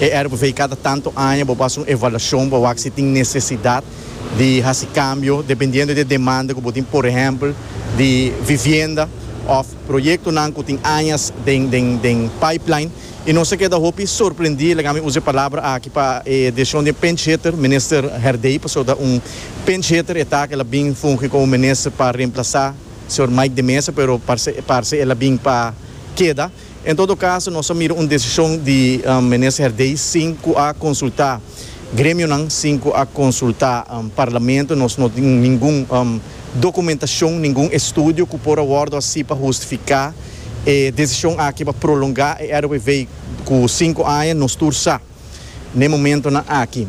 E RBV kada tantu aña bo basa un evaluashon pa wak si tin nesesidat di hasi kambio dependiendo di e demanda ku bo tin, por ehèmpel di vivienda òf proyektonan ku tin añas den den den pipeline. I nos a keda hopi sorprendí, laga mi usa e palabra aki pa e desishon di e pinchhitter, Minister Herdey, pasobra ta un pinchhitter e ta, ku el a bin fungi komo minister pa remplasá señor Mike de Meza, pero parse parse el a bin pa keda. En todo caso nos a mira un decision di Menes Herdey sin cu a consulta gremionan, sin cu a consulta Parlamento. Nos no tin ningun documentacion, ningun estudio cu por a wordo haci pa hustifica e decision aki pa prolonga e RWV cu cinco aña. Nos tur sa. N'e momentonan aki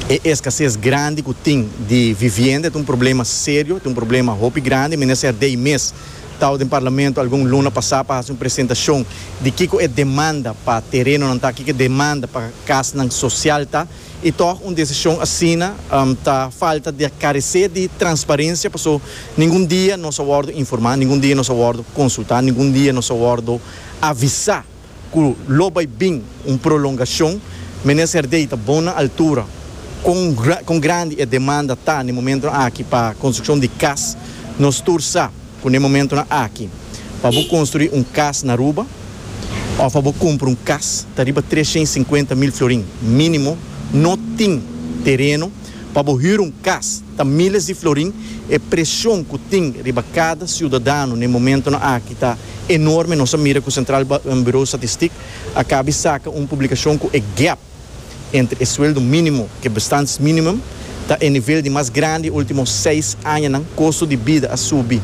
e eskases grandi ku tin di vivienda e ta un problema serio, e ta un problema hopi grandi. Minister Dey mes tau den Parlamento algun luna pasá pa hasi un presentashon di kiko e demanda pa terenonan ta, kiko e demanda pa kasnan sosial ta. I tòg un desishon asina ta falta di a karesé di transparensia paso ningun dia nos a wòrdu informá, ningun dia nos a wòrdu konsultá, ningun dia nos a wòrdu avisá. cu lo bay bin un prolongacion, Menen Serdey ta bon na altura con con grandi e demanda ta n'e momentonan aki pa construccion di cas. Nos tur sa cu n'e momentonan aki pa bo construi un cas na Aruba of pa bo cumpra un cas ta riba trescientos y cincuenta mil florin minimo, no tin tereno. Pa bo hür un kas ta míles di florin, e presion ku tin riba kada siudadano n'e momentonan aki ta enorme. Nos a mira ku Sentral Buro Statistik a kabi saka un publikashon ku e gèp entre e sueldo mínimo ku e bestaansminimum ta e nivel di mas grandi e último seis añanan. Kosto di bida a subi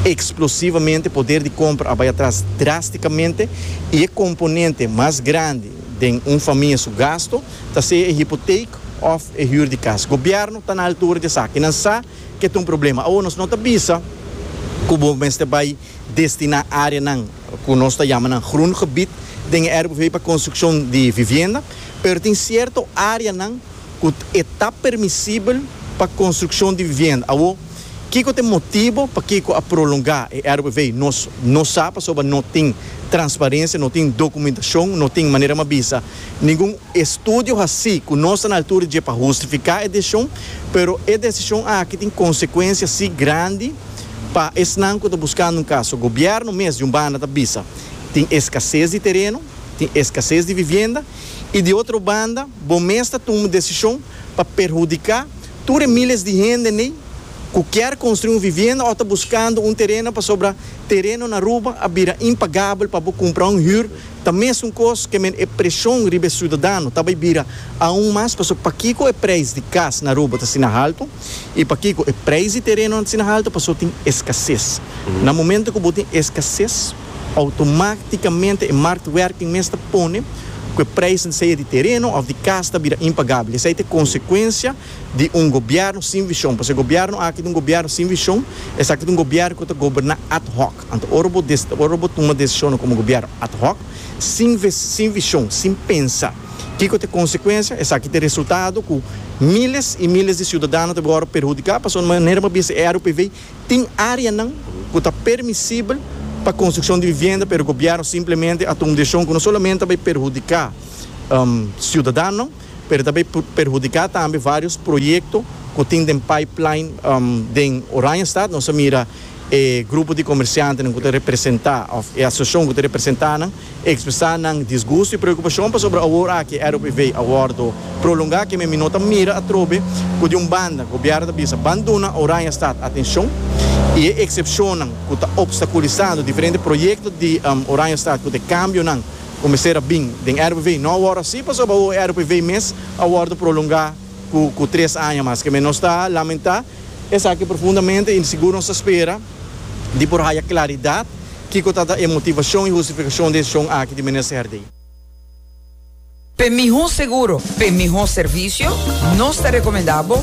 eksplosivamente, poder di kompra a bai atras drástikamente i e komponente mas grandi den un famia su gasto, ta sea e hipoteek of e huur di cas. Gobierno ta na altura di esaki. Nan sa ke ta un problema. Awor nos no ta bisa cu bo mester bay destina areanan cu nos ta yama nan groen gebied den e RBV pa construccion di vivienda, pero tin cierto areanan cu e ta permisibel pa construccion di vivienda. Awor, kico ta e motibo pakico a prolonga e RBV? Nos no sa pasobra no tin transparencia, no tin documentacion, no tin manera m'a bisa. Ningun estudio haci cu nos ta na altura dje pa hustifica e decision, pero e decision aki tin consecuencia si grandi pa esnan cu ta buscando un caso. Gobierno mes di un banda ta bisa tin escasez di tereno, tin escasez di vivienda y di otro banda bo mes ta tuma decision pa perhudica tur e miles di hende n'ey cu kier construi un vivienda o ta buscando un tereno pasobra tereno n'Aruba a bira impagabel pa bo cumpra un huur Ta mesun kos ke men e preshon riba e siudadano ta bai bira aun mas pasobra pakiko e preis di kas na Aruba ta asina haltu i pakiko e preis di terenonan ta asina haltu pasobra tin eskases. Na momento ku bo tin eskases outomáktikamente e marktwerking mes ta pone ku e preisnan sea di tereno òf di kas ta bira impagabel. Esei ta e konsekuensia di un gobièrnu sin vishon pasobra e gobièrnu aki ta un gobièrnu sin vishon, esaki ta un gobièrnu ku ta goberná ad hoc. Anto ora bo ora bo tuma desishonnan komo gobièrnu ad hoc, sin sin vishon, sin pensa kiko ta e konsekuensia, esaki ta e resultado ku miles i miles di siudadano ta bin wòrdu perhudiká pasobra di manera bo a bisa e RUPV tin áreanan ku ta permisibel pa konstrukshon di vivienda pero gobièrnu simplemente a tuma un desishon ku no solamente a bai perhudiká siudadanonan. pero ta bay perhudica tambe varios proyecto cu tin den pipeline den Oranjestad, nos a mira e grupo di comerciantenan cu ta representa of e asociacion cu ta representa nan expresa nan disgusto y preocupacion pasobra awor aki e ROPV a wordo prolonga kimen mi no ta mira atrobe cu di un banda gobierno ta bisa ban duna Oranjestad atencion y e excepcionnan cu ta obstaculisando diferente proyecto di Oranjestad cu ta e cambionan ku mester a bin den RPV. No awor así pasobra awor e RPV mes a wòrdu prolongá ku tres aña mas. Kemey nos ta lamentá esaki profundamente i sigur nos ta spera di por haya klaridat kiko ta e motivashon i hustifikashon di e deshishon aki di Minister Herdé. P'e mihó seguro, p'e mihó servisio, nos ta rekomendá bo